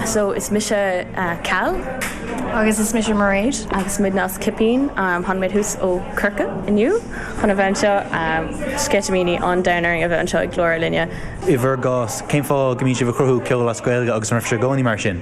So is mise Cal. Agus is mise Mairéad. Agus muidne Cipín. Thánamar aníos ó Corcaigh inniu chun a bheith anseo. Sceitimíní an domhain orainn a bheith anseo ag Glór Ár Linne. I bhur gcás, cén fáth go mbíonn sibh ag cruthú ceoil as Gaeilge agus an raibh sibh i gcónaí mar sin?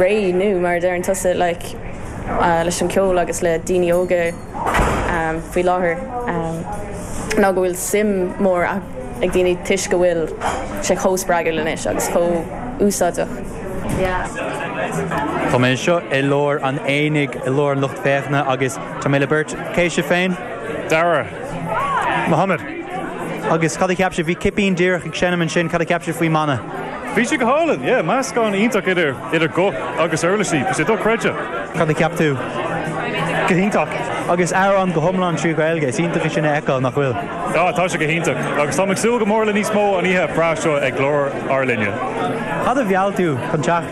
réidh nó mar a deireann tusa like leis an ceol agus le daoine óga faoi láthair ná go bhfuil suim mór ag daoine toisc go bhfuil sé chomh spreagadh anois agus chomh úsáideach. Tá mé anseo i lár an aonaigh, i lár an lucht féachana agus tá mé le beirt. Cé sibh féin? Dara. Mohammed, Agus cad a cheap sibh, bhí cipín díreach ag seinm ansin, cad a cheap sibh faoin mbanna? Bhí sé go hálainn, yeah, meascán iontach idir idir guth agus uirlisí, bhí sé dochreidte. Cad a cheap tú? Go hiontach. Agus amhrán go hiomlán trí Ghaeilge, is iontach é sin a fheiceáil, nach bhfuil? Ah, tá sé go hiontach agus táim ag súil go mór le níos mó an oíche breá seo ag Glór ár Linne. Cad a mheall tú chun teacht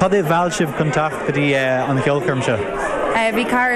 Cad é mheall sibh chun teacht go dtí an cheolchoirm seo? Bhí cara